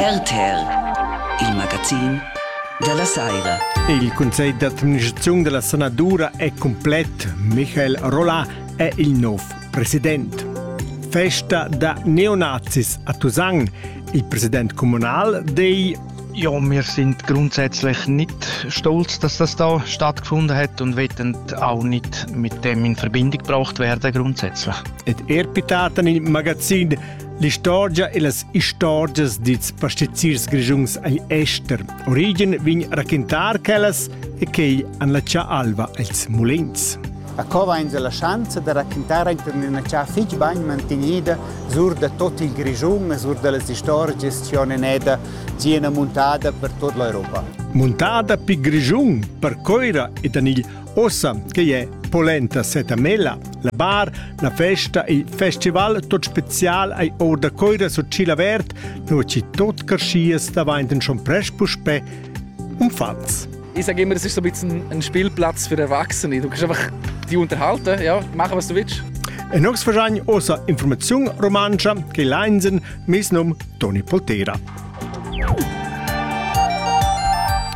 RTL, il magazin dalla saira. Il Consiglio d'administrazione della Sanadura è completo. Michael Rollà è il nuovo presidente. Festa da neonazis a Tusan. Il presidente comunale dei ja, wir sind grundsätzlich nicht stolz, dass das da stattgefunden hat und wollen auch nicht mit dem in Verbindung gebracht werden grundsätzlich. Et Ehrpitaten im Magazin L'istorgia e las istorgias dils pastiziers grischuns agl ester. Origen vegn raquintar quellas e quei an la cia alva els mulins. A cova in la schanza da raquintar enten ina cia fich bagn mantenida sur da tot il Grischun e sur da las istorgias che on eneda ziena muntada per tot l'Europa. Muntada pi Grischun, per Coira ed an il Ossa che è polenta setamella, la bar, la festa e il festival tot spezial ai or da coira sur Cila Vert, nu ci tot carschias davant schon presch puspè umfants. Ich sage immer, es ist so ein bisschen ein Spielplatz für Erwachsene. Du kannst einfach die unterhalten, ja, machen, was du willst. En Oxford ossa informaziun romancha che leinsen mis num Toni Poltera.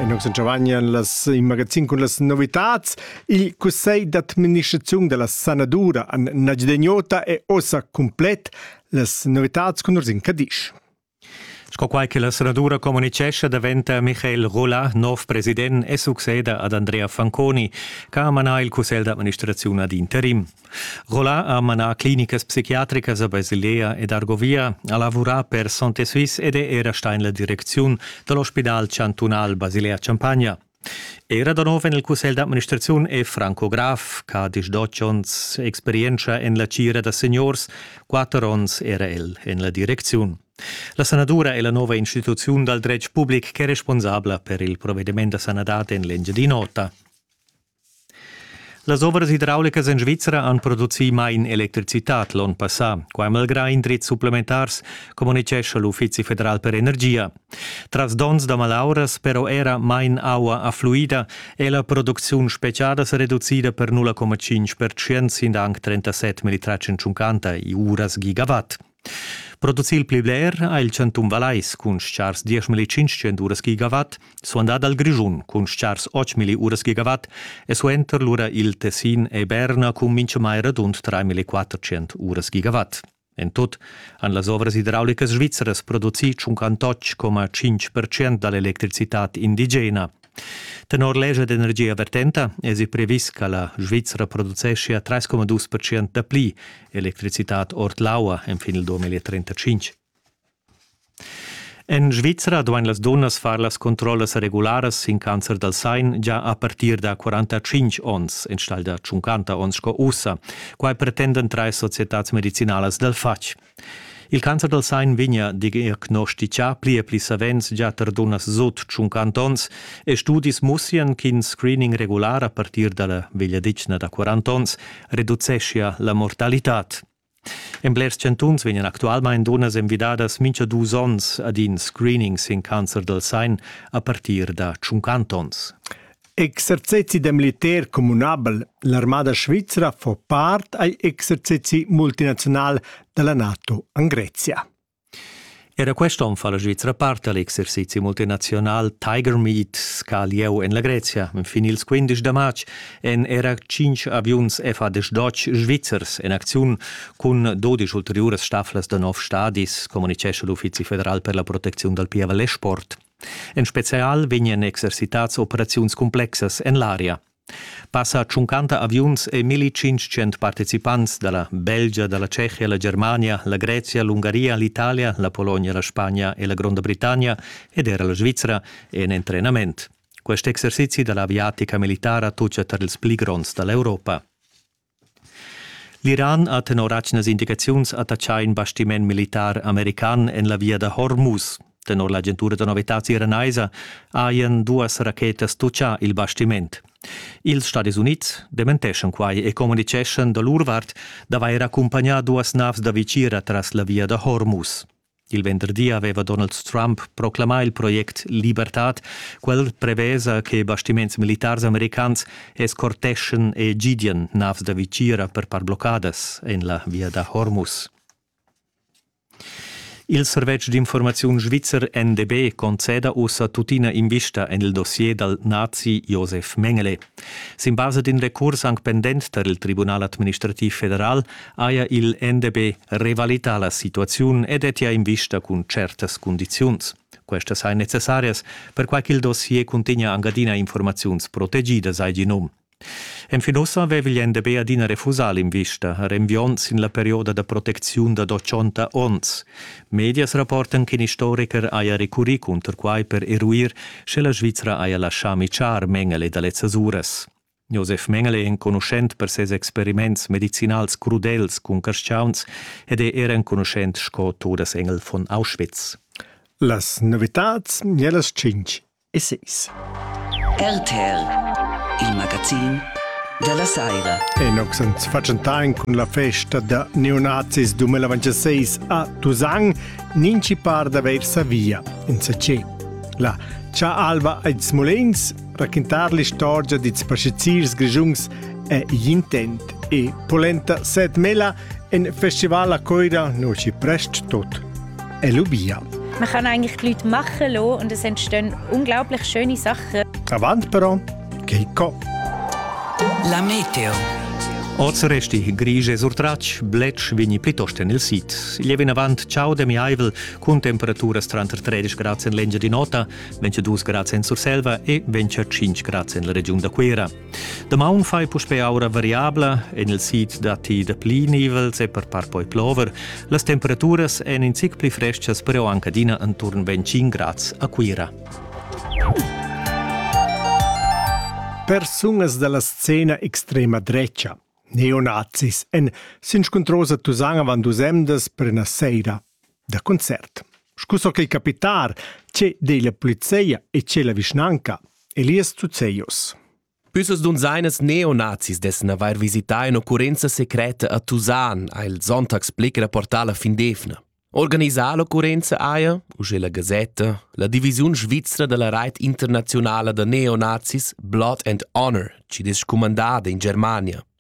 E nus intervegnan las in magazin cun las novitads. Il cussegl d'administraziun della sanadura an Nagidegnota è ossa complet. Las novitads con Ursin Cadisch. Sco quai che la senadura communicescha daventa Michael Rolla, nov president, e succeda ad Andrea Fanconi, che ha manà il cussegl d'administraziun ad interim. Roland ha manà clinicas psichiatricas a Basilea ed Argovia, ha lavurà per Santé Suisse ed è era stà en la direcziun da l'ospidal chantunal Basilea-Champagna. Era da nov en il cussegl d'administraziun è Franco Graf, che ha disdotg onns experientscha en la tgira da seniors, quatter onns era el en la direcziun. La sanadura è la nova instituziun dal dretg public ch'è responsabla per il provediment da sanadad en l'Engiadin'Ota. Las ovras hidraulicas en Svizra han producì main electricitad l'onn passà. Quai malgrà indrizs supplementars, communitgescha l'Uffizi federal per energia. Tras donns da malauras però era main aua affluida e la producziun speciada sa reducida per 0,5% sin anc 37 militratsch en tschuncanta e uras gigawatt. Producir il pli bler ha il chantun Vallais cun chars 10.500 uras gigawatt, suandà dal Grischun cun chars 8.000 uras gigawatt e suenter lura il Tessin e Berna cun minchamai radund 3.400 uras gigawatt. En tut han las ovras idraulicas svizras produci 58,5% da l'electricitad indigena, Tenor legia d'energia vertenta esi previs che la Svizra produceschia 3,2% dapli electricitad ord l'aua fin il 2035. En Svizra duain las dunnas far las controllas regularas sin cancer dal sein già a partir da 45 onns enstagl da 50 onns sco ussa. Quai pretendan trais societads medicinalas dal fatg. Il cancer dal sain vegna diagnostichà pli e pli savens gia tar dunnas sut tschunquant onns e studis mussian ch'in screening regular a partir da la vegliadetgna da 40 onns reduceschia la mortalitad. En blers chantuns vegnan actualmain dunnas envidadas mincha dus onns ad in screening sin cancer dal sain a partir da 50 onns. Exercezi da militar communabel L'armada svizra fa part agl exercezi multinaziunal dalla NATO en Grezia. Era quest'on fa la Svizra parte all'exercizi multinazional Tiger Meet ca lieu en la Grezia. Fin ils 15 da marz en era 5 aviuns FAD-12 svizzers en acziun cun 12 ulteriuras stafflas da nov stadis, communicesce l'Uffizi federal per la protezione dal pieval e sport. En spezial vegnan exercitads operaziuns cumplexas en l'aria. Passa tschuncanta aviuns e 1500 participants da la Belgia, da la Tschechia, la Germania, la Grezia, l'Ungaria, l'Italia, la Polonia, la Spagna e la Gronda Britannia ed era la Svizra en entrenament. Quest exercizi da l'aviatica militara tocca tar ils pli gronds da l'Europa. L'Iran ha tenor atgnas indicaziuns attatgà in bastiment militar american en la via da Hormuz. Tenor l'agentura da novitads iranaisa hajan duas rachetas tutgà il bastiment. Ils Stadis Unids dementeschan quai e communitgeschan da lur vart d'avair accumpagnà duas navs da vitgira tras la via da Hormuz. Il venderdi aveva Donald Trump proclamà il project Libertad, quel prevesa che bastiments militars americans escorteschan e gidian navs da vitgira per part bloccadas en la via da Hormuz. Il servetsch d'informaziun svizzer NDB conceda ussa tuttina invista en il dossier dal nazi Josef Mengele. Sin basa d'in recurs anc pendent tar il Tribunal administrativ federal haja il NDB revalità la situaziun e dettia invista cun tschertas cundiziuns. Questas sain necessarias, perquai ch'il dossier cuntegna anc adina informaziuns protegidas, hai gì num. Enfin ussa aveva il NDB adina refusà l'invista, renviond sin la perioda da protecziun da dochonta onns. Medias rapportan ch'in istoricher haja recurrì cunter quai per eruir, sche la Svizra haja laschà mitschar Mengele da lezzas uras. Josef Mengele è enconuschent per ses experiments medicinals crudels cun carstgauns ed è er enconuschent sco Todesengel von Auschwitz. Las novitads nellas tschintg e seis. RTL, il magazin della Saira. Enox ans facentain cun la festa da neonazis 2026 a Tusang, ninci par da ver Savia, in Sacé. La Cha Alva ed Smolens raquintar l'istorgia dils passegiers grischuns è igl intent e polenta set mela en festival a Coira nosci prest tot. E lubia. Man kann eigentlich die Leute machen lassen und es entstehen unglaublich schöne Sachen. Avant però, Keiko. La meteo. Oz resti grigie sur tratsch, bletsch vegni plitost en il sit. Il è vinavant ciao demiaivel, cun temperaturas tranter 13 grads en l'engia di nota, 22 grads en Surselva e 25 grads en la regiun da Cuira. Damaun fai puspè aura variabla, en il sid datti dapli nivels e per part poi plover. Las temperaturas èn in zic pli frestgas, però anche adina intorno 25 grads a Cuira. Persunas dalla scena extrema drecha, neonazis, en s'inscuntrosa Tusanga van dus emdas per una seira Da concert. Scu so ch'ei capitar, che dei la polizia e che la vischnanca, Elias Zuzzeios. Üssos dun seinas neonazis dessen avair visità in occurrenza secreta a Tusan, ha il Sonntagsblick rapportà la Findefna. Organisar l'occurrenza haja, usche la Gazetta, la divisiun svizra della Reit internazionala da neonazis Blood and Honor, ci des scumandada in Germania.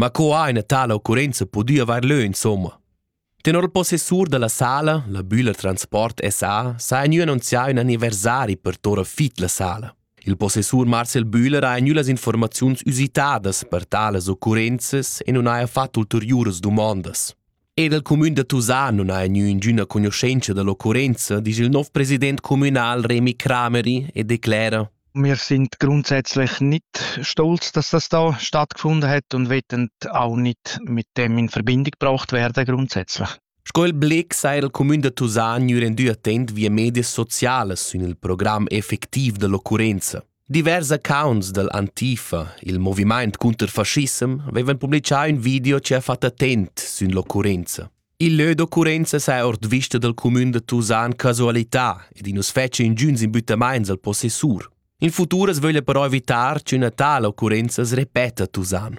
Ma co ha ina tala occurrenza pudü avair lö insomma? Tenor il possessur da la sala, la Bühler Transport SA, s'ha gnü annunzià ün anniversari per Tora Fit la sala. Il possessur Marcel Bühler ha gnü las informaziuns usitadas per talas occurrenzas e nun haja fat ulteriuras dumondas. Ed il cumün da Tusà non ha gnü ingüna cugnuschenza dall'occurrenza, disch il nov president communal Remi Crameri e declera: Wir sind grundsätzlich nicht stolz, dass das da stattgefunden hat und wetten auch nicht mit dem in Verbindung gebracht werden grundsätzlich. Sco il Blick sai il cumün da Tusà gnü rendü attent via medias socialas sün il program effectiv dall'occurrenza. Divers accounts dall Antifa, il movimaint cunter fascissem, vevan publichà ün video che ha fat attent sün l'occurrenza. Il lö d'occurrenza s'ha ord vista dal cumün da Tusan casualità ed i nu's fetscha ingüns imbüttamaints al possessur. In futur as vöglia però evitar ch'üna tala occurrenza as repeta a Tusan.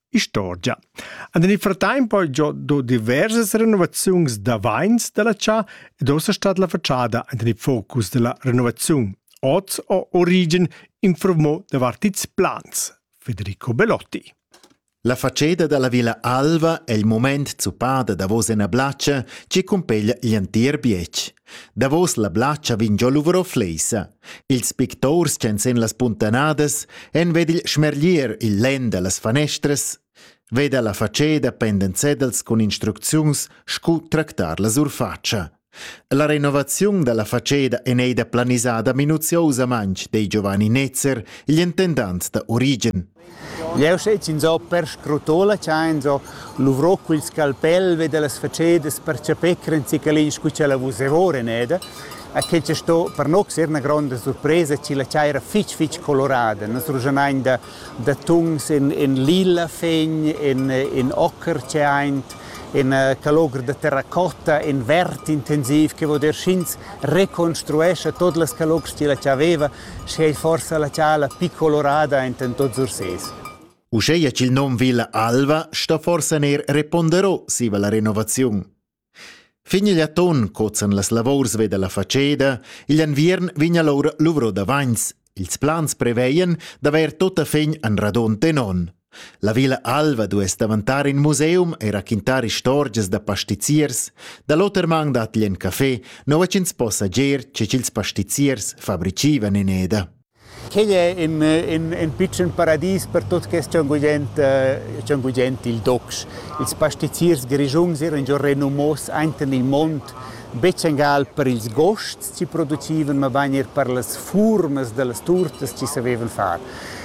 Istorgia. An il fratemp ho giò do diversas renovaziuns da vains da la chà ed ossa stat la fatschada ant en il focus da la renovaziun. Oz ho Origen informò davart ils plans. Federico Belotti. La faceda da la Villa Alva è il moment zuppada davos ena blatscha che cumpeglia l'entir bietg. Davos la blatscha vin giò Luvro Fleisa. Ils picturs ch'en sen las puntanadas en ved il schmerglier il lenn da las fanestras, veda la faceda pendent sedels cun instrucziuns scu tractar la surfatscha. La renovaziun da la faceda en ei da planisada minuziosamaintg dei Giovanni Netzer, igl intendant da Origen. Jeu sez ins ho perscrutola cha ins ho luvrò quel scalpel vi dallas facedas per chapir in cicalin scu cha la vus evoren eda. E quel che sto per no ser üna gronda surpresa chi la chaira fich fich colorada. Nus rugionain da, da tuns in, in lila fegn, in, in ocher che aint, in calogr da terracotta, in verd intensiv che vo der sch'ins reconstruescha tot las calogs chi la cha veva sche ei forsa la tschala pli colorada enten tots Ursés. Uscheia ch'il nom Villa Alva sta forsa ner repondero siva la renovaziun. Fin igl atton cozan las lavors veda la faceda, igl anviern vigna lor luvro da vains, ils plans preveien d'aver tota fin an radon tenon. La Villa Alva duess daventar in museum e raquintar istorgias da pastiziers. Da l'oter man dat igl in café, nua ch'ins po sager che ch'ils pastiziers fabricivan in eda. Quei è in, in, in piccen paradis per tut quest gigant, eh, gigant il docs. Ils pastiziers grigiuns erano già renumos anten il mond, becengal per ils gosts che producevano, ma bain er per las furmas delle torte che sapevan fare.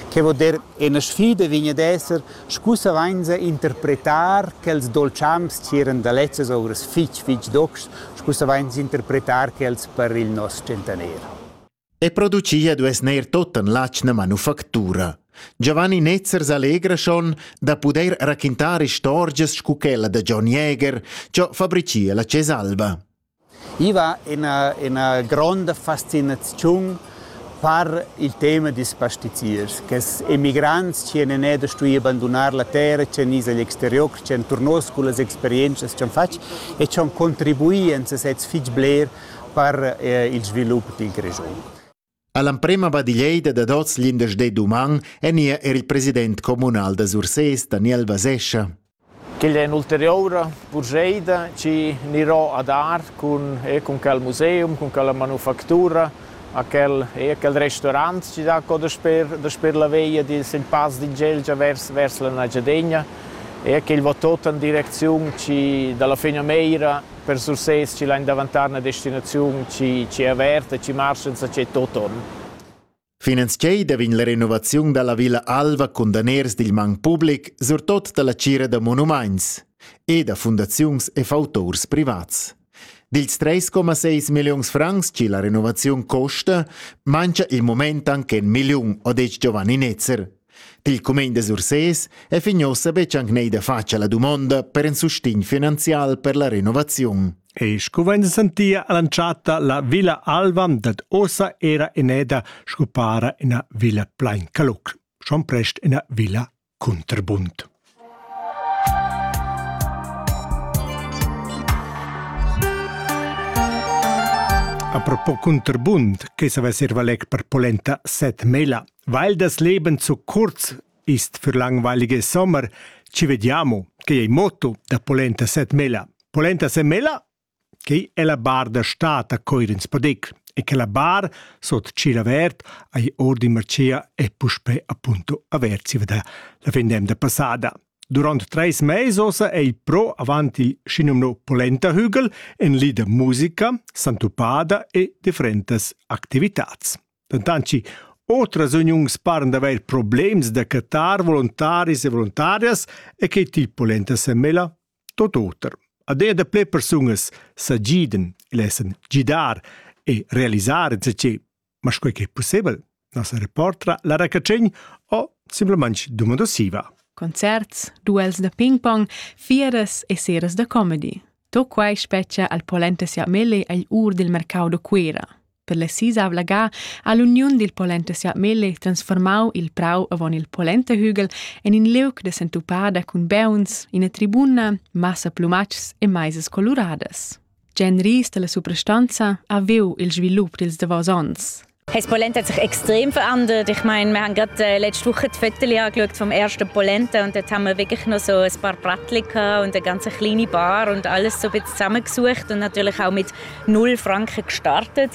Che vuol dire, Ina sfida vegn ad esser, sco savainsa interpretar quels dolciams ch'eran da lezzas ovras fitg, fitg docs, sco savainsa interpretar quels per il nos tschentaner. E producia duess neir totan l'atschna manufactura. Giovanni Netzer s'allegra schon da pudair raquintar istorgias scu quella da John Jäger, ciò fabricia la Cesalba. I va ina, ina gronda fascinaziun per il tema dils pastiziers, che emigrants chi han neir da stuir bandunar la terra, chi han is agl exterior, chi han turnos cullas experientschas ch'han fatg e chi han contribui en sesezs fich bler per eh, il svilup dil Grischun. All'emprema badiglieida dad oz glindesdì d'uman ènia er il president communal da Sursés, Daniel Vasescha. Quella è un'ulteriura purscheida che anirò a dar cun, e cun quel museum, cun quella manufactura, a quel, e a quel restaurant che dà co dasper, dasper la veia dils in pass d'Ingelgia vers, vers la Nagiadegna e a quel va tot en direcziun che dalla fin a Meira per Sursés chi lain davantar üna destinaziun chi è averta, chi marcha insachet tot on. Finanziei da vin la renovaziun dalla Villa Alva cun daners dil man public, surtot dalla cira da monumaints e da fundaziuns e fautors privats. Dils 3,6 milliuns francs chi la renovaziun costa, mancha il moment anche 1 milliun, ho detg Giovanni Netzer. Pil cumegn da Sursés è fin ussa betg anc neida fatg la dumonda per in sustegn finanzial per la renovaziun. E sco vegn sentia all'entschatta la Villa Alva dat ossa era eneda sco para ina villa plain caluc, schon prest ina villa cunterbund. Apropos Cunterbund, che savess ir valeg per polenta set mela, weil das Leben zu kurz ist für langweilige Sommer, ci vediamo, che è il motto da polenta set mela. Polenta set mela? Quei è la bar da stad a Coirins Podec e quella bar sut tschiel avert ei ordin marcia e puspei appunto avert siva da la fin d'emda passada. Durant treis meis ossa ei pro avant il schinumno polenta hügel en li da musica, santupada e differentas activitats. Dentanci otras uniuns paran d'avair problems da cattar volontaris e voluntarias e che til polenta semela tot oter. Ad er daplè persungas sa gidan, lessen gidar e realisar insatge, ma sco che è possibel, nossa reportra Lara Cacegn o simplemente domandosiva. Concerts, duels da ping-pong, fieras e seras da comedy. To quai spetgia al polenta sia mele agl ur del mercau da Cuera. Per la sisavla ga ha l'uniun dil Polentesiat Melle transformau il prau avon il Polentehügel en in liug da sentupada cun beuns, ina tribuna, massa plumatschs e maisas coluradas. Gen Ries dalla suprastanza ha viu il svilup dils davos onns. Das Polent hat sich extrem verändert. Ich meine, wir haben gerade äh, letzte Woche die Fotos angeschaut vom ersten Polenta und dort haben wir wirklich noch so ein paar Bratli und eine ganz kleine Bar und alles so ein bisschen zusammengesucht und natürlich auch mit null Frankreich gestartet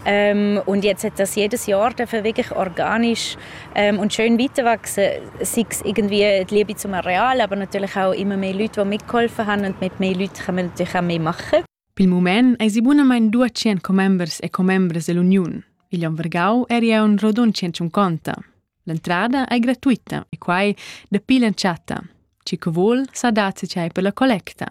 ähm, und jetzt hat das jedes Jahr dürfen wirklich organisch ähm, und schön weiterwachsen, sei es irgendwie die Liebe zum Areal, aber natürlich auch immer mehr Leute, die mitgeholfen haben und mit mehr Leuten können wir natürlich auch mehr machen. Pel moment ei si bunamain 200 commembers e commembres dell'Uniun. Il Vergau eri un rodun 150. L'entrada è gratuita e quai dapi l'entschatta. Chi che vuol sa dazzi per la collecta.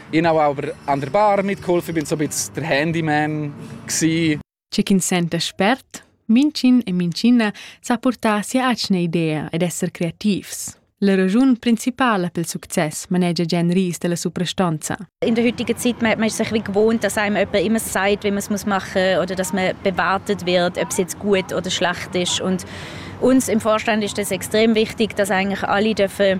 Ich habe aber an der Bar mitgeholfen, bin so ein bisschen der Handyman gsi. C'è chi sente spert, Mincin e Mincina sa portar sia atgna idea ed esser creativs. La ragiun principala pel success manegia Jen Ries della Suprastanza. In der heutigen Zeit man, man ist sich wie gewohnt, dass einem jemand immer sagt, wie man es machen muss oder dass man bewartet wird, ob es jetzt gut oder schlecht ist und uns im Vorstand ist es extrem wichtig, dass eigentlich alle dürfen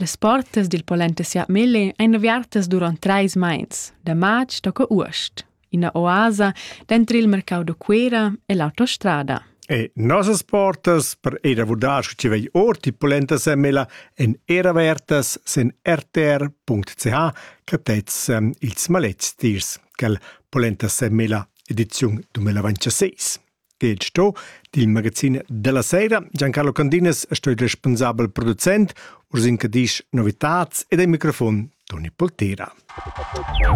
Las portas dil polenta Siatmelle ein aviartas duront treis meins, da matg tocca uost, ina oasa denter il mercau da Cuera e l'autostrada. E nossas portas per ir a vurdar sche ti vegli ord die polenta Semela en er avertas sen rtr.ch catets um, ils maletgs tiers quel polenta Semela ediziun 2026. Gid sto dil magazin della sera. Giancarlo Candinas sto il responsabel producent, Ursin Cadisch novitats ed ai microfon Toni Poltera.